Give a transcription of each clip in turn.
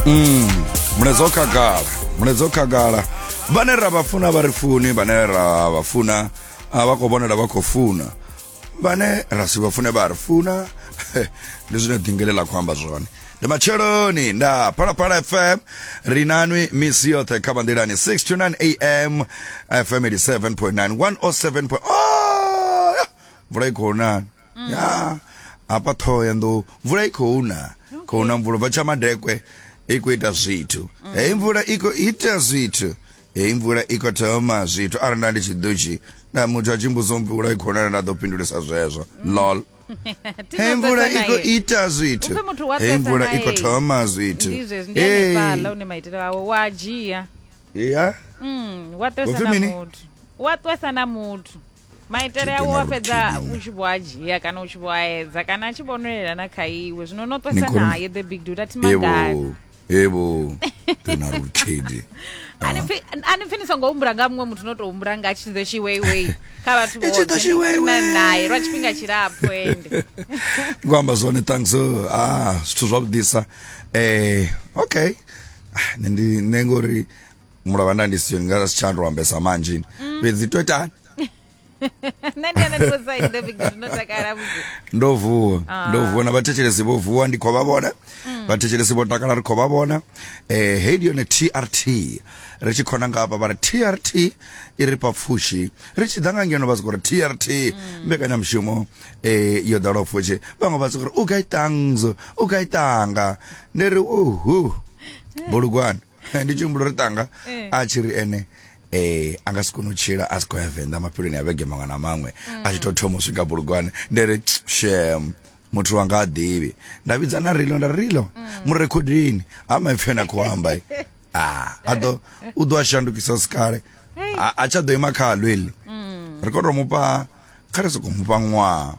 mm mulaedza o khagala mulaedza o khagala vhane ra vha funa vha ri funi vhane ra vha funa a vha khou vhonela vha khou funa vhane ra si vha fune vha ri funa ndi zwine dingele ḽa khou amba zwone ndi matsheloni nda phalaphala fm ri nanwi misi yoṱhe kha vanḓilani 6 to 9 am fm 87.9 107 oh, mvula i khou nani ya hafha ṱhoho ya nḓou mvula i khou na khou na mvula bva tsha madekwe i khou ita zwithu heyi mvula i khou ita zwithu heyi mvula i khou thoma zwithu arali nda ndi tshi ḓutshi na muthu a tshi mbudzo mvula i khou na nda ḓo pindulisa zwezwo lol Thi heyi ngo mvula sedzana i khou naye. ita zwithu Uphe muthu wa heyi mvula sedzana i khou naye. thoma zwithu Ndi zwezwi, ndi Hey. hanefhaḽa une maitele awe wa dzhia ya Mm, wa ṱwesa Upfi na mini? muthu wa ṱwesa na muthu maitele awo wa fhedza u tshi vho a dzhia kana u tshi vho a edza kana a tshi vho nwelela na kha iwe zwino no ṱwesa naye the big dude a thi magai evo tena lutshidi ani pfhi ni songo humbula nga muṅwe muthu no tou humbula nga tshiḓo tshiweiwei kha vhathu vhoṱhe naye lwa tshifhinga tshilapfhu ende ndi khou amba zwone thanks ah zwithu zwavhuḓisa um eh, okay ah, nṋe ndi nṋe ngori mulovha nda ndi siyo nga si tsha ndo ambesa manzhi mm. fhedzi to itani nṋe ndi ana ndiko side ndo big no takala vhuku ndo vuwa ah. ndo vuwa na vhathetshelesi vho vuwa ndi kho vha vhona mm. vhathetshelesi vho takala ri kho vha vhona eh hey ndi yone TRT ri tshi khona nga hafha vhari TRT i ri papfushi ri tshi ḓa nga ngeno vha sikori TRT mm. mbekanya mushumo eh yo dalo pfushi vhaṅwe vha sikori u ga itangzo u ga itanga ndi ri uhu bulugwana ndi tshi humbula uri tanga eh. a tshi ri ene eh a nga si kone u tshila a si khou ya venḓa mafheloni a vhege maṅwe na maṅwe a tshi tou thoma u swika bulugwane nde ri shem muthu wanga a ḓivhi nda vhidza na rilo nda rilo mm. mu rekhodini ha maipfi ane a khou amba ah, a ḓo u ḓo a shandukisa si kale a tsha ḓo ima kha halweli mm. ri khou tou mupha kha ri sokou mufha ṅwaha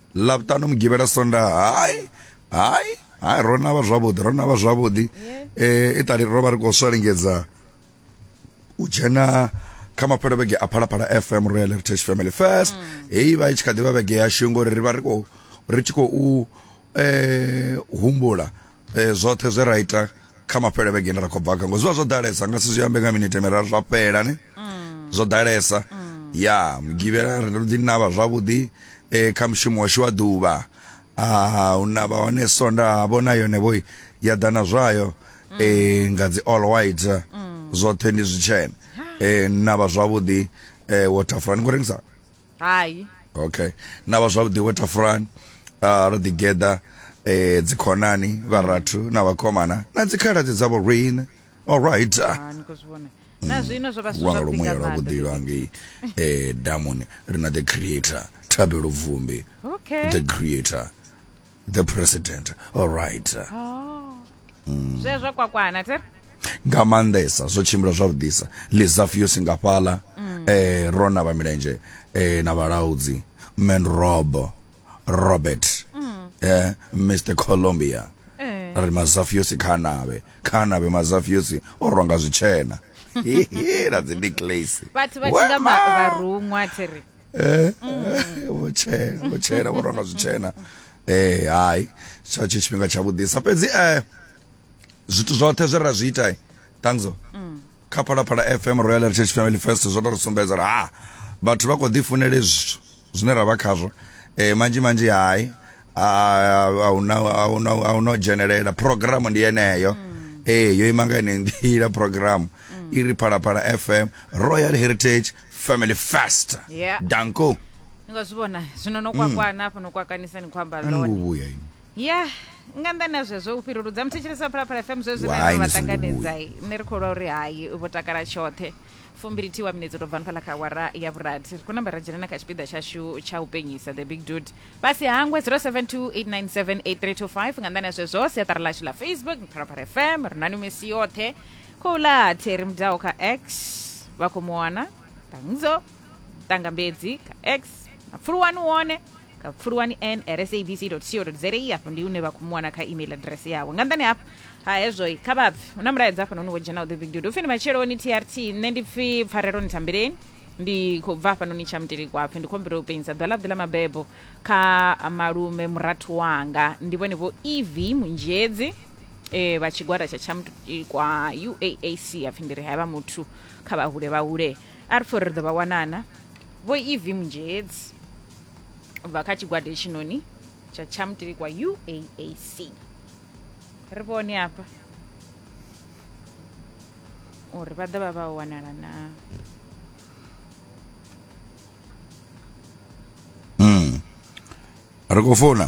lavhutano mugivhela sonda hai hai hai ro navha zwavhuḓi ro navha zwavhuḓi eh iṱali ro vha ri khou swalingedza u dzhena kha mapfhelo vhege a phalaphala fm royal heritage family first heyi vha i tshi kha ḓivha vhege yashu ngori ri vha ri khou ri tshi khou eh humbula Eh, zwoṱhe zwe ra ita kha mafhele vhege ine ra khou bva kha ngo zwi vha zwo ḓalesa nga si zwi ambe nga minete miraru zwa fhela ne zwo ḓalesa ya mugivhela ri ndo ḓi navha zwavhuḓi eh, kha mushumo washu wa ḓuvha Ah, u navha hone sonda ha vhona yone vhoi ya ḓa na zwayo eh, nga dzi all white zwoṱhe ndi zwitshena eh, navha zwavhuḓi eh, waterfront ni khou rengisa hai okay na vha zwavhuḓi wo tafurani uh, ro ḓi geḓa eh, dzikhonani vharathu na vhakomana na dzikhaladzi dzavho rine alright uh, Ah, ni khou zwi vhona na zwino zwo vha zwi lwanga zwavhuḓi lumuya nga lwa maanḓa. vhuḓilo angei eh, damuni ri na the creator thabelo vumbi okay the creator the president all right oh. mm. zwezwo kwakwana tere nga maanḓesa zwo tshimbila zwavhuḓisa lizafius nga fhala mm. eh, rona vha milenzhe eh, na vhalaudzi man rob robert mm. eh, mr colombia eh. ri mazafiusi kha navhe kha navhe mazafiusi o rwanga zwitshena na dzi necklace vhathu vha tshi nga vharuṅwa thiri eh vhutshena vhutshena vho ronga zwitshena eh hai tsha tshi tshifhinga tsha vhudisa fhedzi eh zwithu zwoṱhe zwe ra zwi ita eh, tangzo kha phalaphala fm royal heritage family fest zwo to ri sumbedza uri ha vhathu vha kho ḓi funele zwithu zwine ra vha khazwo eh manzhi manzhi hai ahuna ahuna ahuna u dzhenelela programu ndi yeneyo eh yo ima nga ine nḓila programu i ri phalaphala fm royal heritage family fast Yeah. danko ni khou zwi vhona zwino no kwakwana hafho no kwakanisa ni khou amba ani lone nguvhuya ini ya nga nnḓani ha zwezwo u fhiruludza muthetshelesa phalaphala fm zwezwi Why nṋe ndo vha ni songo ṱanganedzai nṋe ri khou lwa uri hai vho takala tshoṱhe fumbili thiwa minetse to bvani fhala kha awara ya vhurathi ri khou namba ra dzhena na kha tshipiḓa tshashu tsha u penyisa the big dude vha si hangwe 0728978325 nga nnḓani ha zwezwo siaṱari lashu ḽa facebook phalaphala fm ri na ni misi yoṱhe khou ḽa theri mudaho kha x vha khou mu wana ṱangzo ṱangambedzi kha x na pfuluwani wone kha pfuluwani n sabc co za afho ndi hune vha khou mu wana kha email address yawe nga nḓani hafho ha hezwo kha vhabvi hu na mulaedza hafha noni wo dzhena u ḓi big dude upfi ndi matsheloni trt nṋe ndi pfi pfarelo ni thambeleni ndi khou bva hafhanoni tsha mutelikwapfi ndi khombela u pengisa ḓwa ḽaḓi ḽa mabebo kha malume murathu wanga ndi vhone vho ev munzhedzi eh, vha tshigwada tsha tshamukwa uaac hapfi ndi ri havha muthu kha vhahule vhahule a ri pfhi uri ri ḓo vha wanana vho ev mnzhedzi bva kha tshigwada hetshinoni tsha tshamutilikwa uaac ri vhone hafha uri vha ḓo vha vha wanala na ri khou founa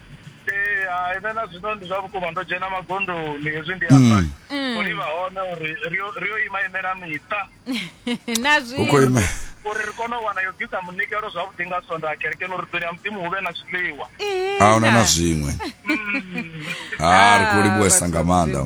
Ee, hai, nṋe na zwino ndi zwa vhukuma ndo dzhena magondoni hezwi ndi amba Mm. uri vha hone uri ri yo- ri yo ima imela miṱa na hu khou zwi ima uri ri kone u wana yo bvisa munikelo zwavhuḓi nga sonda kerekeni uri ḓoni ya mudzimu hu vhe na zwiḽiwa a huna na zwiṅwe ha ri khou livhuwesa nga maanḓa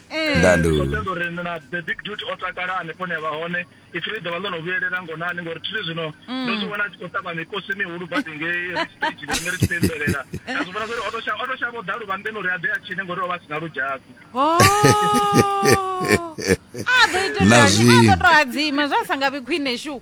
ndandu ṱoḓa uri na the big dude o takala hanefho ne a vha hone ipfi ḽi ḓovha ḽo no vhuyelela ngonani ngori thiri zwino mm. ndo zwi vhona a tshi khou ṱavha mikosi mihulu badi ngei stage rine ri tshi pembelela a zwi vhona zwauri o to shavha u ḓa luvhanḓeni uri a ḓe a tshine ngori o vha a si na ludzhasi oh. a ḓo ita to hadzima zwa sa nga vhi khwine shu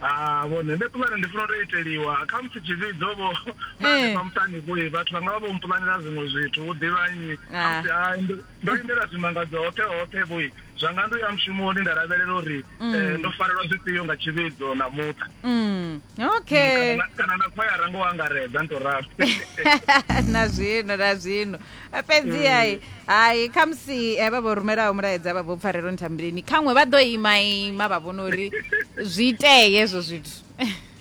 Ha vhone nṋe puḽane ndi funa u to iteliwa khamusi tshivhidzo vho nda Eh. hanefha muṱani vho vhathu vhanga vha vho mpulanela zwiṅwe zwithu vho ḓivha nnyi Ah. khamusi hai ndo- ndo lindela zwimangadzo hoṱhe hoṱhe vho zwanga ndo ya mushumoni nda lavhelela uri eh, ndo farelwa zwifhio nga tshivhidzo na muṱa Mm. okay Kana na- kana na khwayara ngo angaredza ndi to ralo na zwino na zwino fhedziai hai khamusi eh, vha vho rumelaho mulaedza vha vho pfarelo nthambileni khaṅwe vha ḓo ima ima vha vhona uri zwi itee hezwo zwithu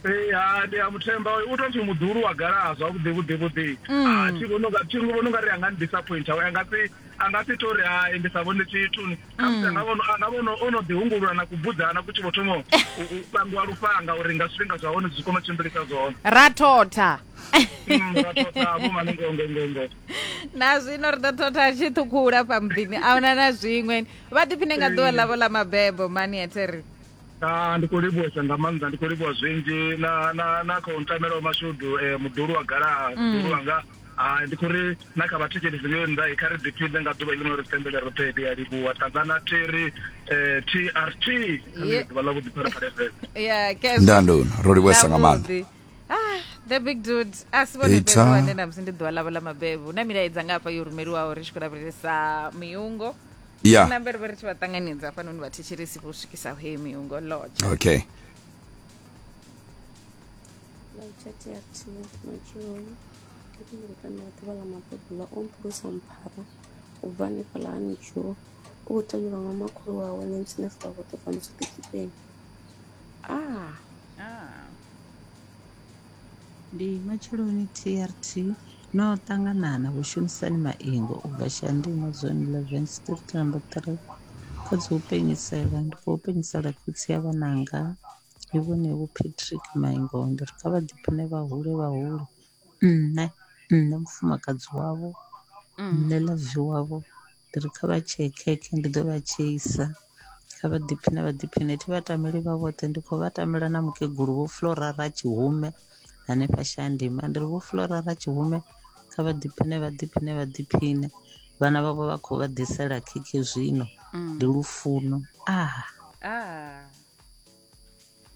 Eh, ha ndi a muthemba hoyo u tou pfhi muḓulu wa galaha zwavhuḓi vhuḓi vhuḓi Ah, thi vhoni unga- thi vhoni unga ri a nga ni disappoint a nga si a nga si to ri hai ndi sa vhone tshithu ni khamusi anga vhono anga vhono o no ḓihungulula na kubudzana ku tshi vho thoma u u pangiwa lufhanga uri nga zwifhinga zwa hone zwi kone u tshimbilisa zwone ra thotha na zwino ri ḓo thotha tshi ṱhukhula fha muḓini ahuna na zwiṅwe vha ḓiphine nga ḓuvha ḽavho ḽa mabebo mani eteri Ah, ndi khou livhuwesa nga maanḓa ndi khou livhuwa zwinzhi na na na khou ntamela wa mashudu eh, muḓulu wa galaha mm. muḓulu wanga hai ndi khou ri na kha vhathetshelesi ngei nnḓa kha ri ḓiphinde nga ḓuvha ḽino ri sendele roṱhe ndi a livhuwa ṱangana theri um trt ḓuvha ḽa vhuḓipharapharefele ya ndandoni ro livhuwesa nga maanḓa ah the big dude a si vhone Peter. fhedzi vhane namusi ndi ḓuvha ḽavho ḽa mabebo hu na milaedza nga hafha yo rumeliwaho ri tshi khou lavhelesa miungo ya na mbere vha ri tshi vha ṱanganedza hafhanoni vhathetshelesi vho swikisa he miungo lodge okay Laitati ya thina matshiloni ndi khou lukanda ya ḓuvha ḽa mabebo ḽa o mphulusa mphara u bva hanefhaḽa ha nitshuo u khou tevhelwa nga makhulu wawe na ntshine fula vhoṱhe fhano tshiṱitshipeni a Ah. Ndi matsheloni TRT no ṱangana na vhushumisani maingo u bva Shandino Zone 11 Street number 3 kha dzi u penyisela ndi khou penyisela khotsi ya vhananga ndi vhone vho Patrick Maingo ndi ri kha vha ḓiphiṋe vha hule vha hule nṋe nṋe mufumakadzi wavho nṋe ḽavi wavho. Ndi ri kha vha tshee khekhe ndi ḓo vha tsheisa kha vha ḓiphiṋe vha ḓiphiṋe thi vha tameli vha vhoṱhe ndi khou vha tamela na mukegulu vho Flora ra Tshihume hanefha Shandima ndi ri vho Flora ra Tshihume kha vha ḓiphiṋe vha ḓiphiṋe vha ḓiphiṋe vhana vhavho vha khou vha ḓisela khekhe zwino mm. ndi lufuno ah ah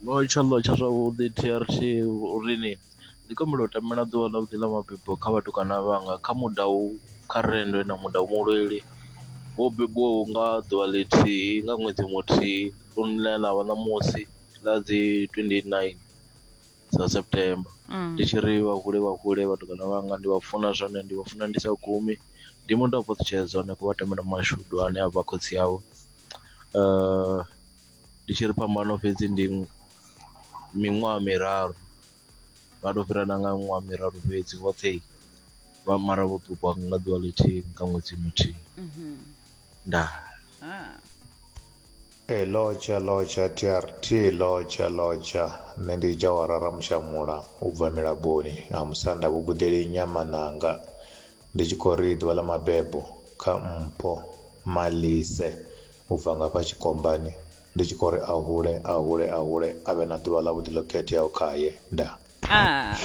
Vho tsha ḽo tsha zwavhuḓi TRT uri ni ndi khou humbela u tamela ḓuvha ḽa vhuḓi ḽa mabebo kha vhatukana vhanga kha muda u kha rennde na muda u mulweli wo bebiwaho nga ḓuvha ḽithihi nga ṅwedzi muthihi lune ḽa ḽa vha ṋamusi ḽa dzi 29 dza September ndi tshi ri vha hule vha hule vhatukana vhanga ndi vha funa zwone ndi vha funa ndi sa gumi ndi muda u fhaṱutshedza hanefho vha tamela mashudu ane a vha khotsi avho . Ndi tshi ri phambano fhedzi ndi miṅwaha miraru vha to fhira na nga miṅwaha miraru fhedzi vhoṱhe vha mara vho ṱukwa nga ḓuvha ḽithihi nga ṅwedzi muthihi mhm. ndaa ah. e eh, loja loja trt loja loja nṋe ndi jawara ramushamula u bva milaboni ha musanda vhugudeli nyamananga Ndi tshi khou ri ḓuvha ḽa mabebo kha mpho Malise u bva ngafha tshikombani ndi tshi khou ri a hule a hule a hule a vhe na ḓuvha ḽavhuḓi ḽo khetheaho khaye nda Ah.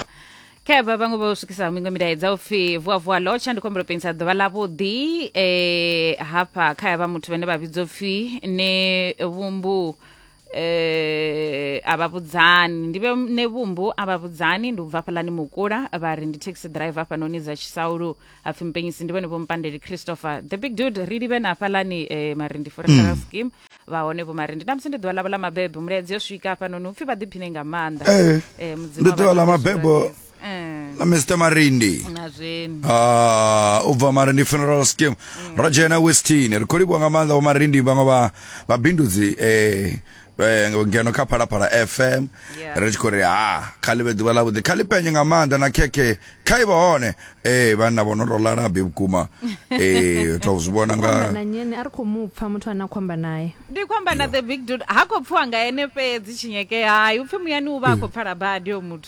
khevha vhaṅwe vho swikisaho miṅwe milaedza u pfi vuavua lotsha ndi khombelo pengisa ḓuvha ḽavhuḓi eh, hafha kha ya vha muthu vhane vha vhidzwa u pfi ne vhumbu eh a vha vhudzani ndi vhe ne vhumbu a vha vhudzani ndi u bva fhalani mukula vha ri ndi taxi driver hafhanoni dza tshisaulu hapfi mpenyisi ndi vhone vho mpandeli christopher the big dude ri livhe na hafhalani eh marindi forever scheme vha hone vho marindi na musi ndi ḓuvha ḽavho ḽa mabebo mulaedzi yo swika hafhanoni upfi vha ḓiphine nga maanḓa Eh, eh ndi mudzimu a vha ḓuvha ḽa ṱanganise mabebo lwa Eh. na mr marindi na zwenu Ah, u bva marindi funeral scheme ro dzhena westini ri khou livhuwa nga maanḓa vho marindi vhaṅwe vha vhabindudzi eh, eh, ngeno kha phalaphala fm Yeah. ri tshi khou ri ha kha ḽi vhe ḓuvha ḽavhuḓi kha ḽi penye nga maanḓa na khekhe kha i vha hone ee vhanna vho no tou lalabi vhukuma ee tou zwi vhona nga amba na nyene a ri khou mu pfa muthu ane a khou amba naye ndi khou amba na the big dude ha khou pfiwa nga ene fhedzi tshinyeke hai upfhi muyani u vha a khou pfala badi yo muthu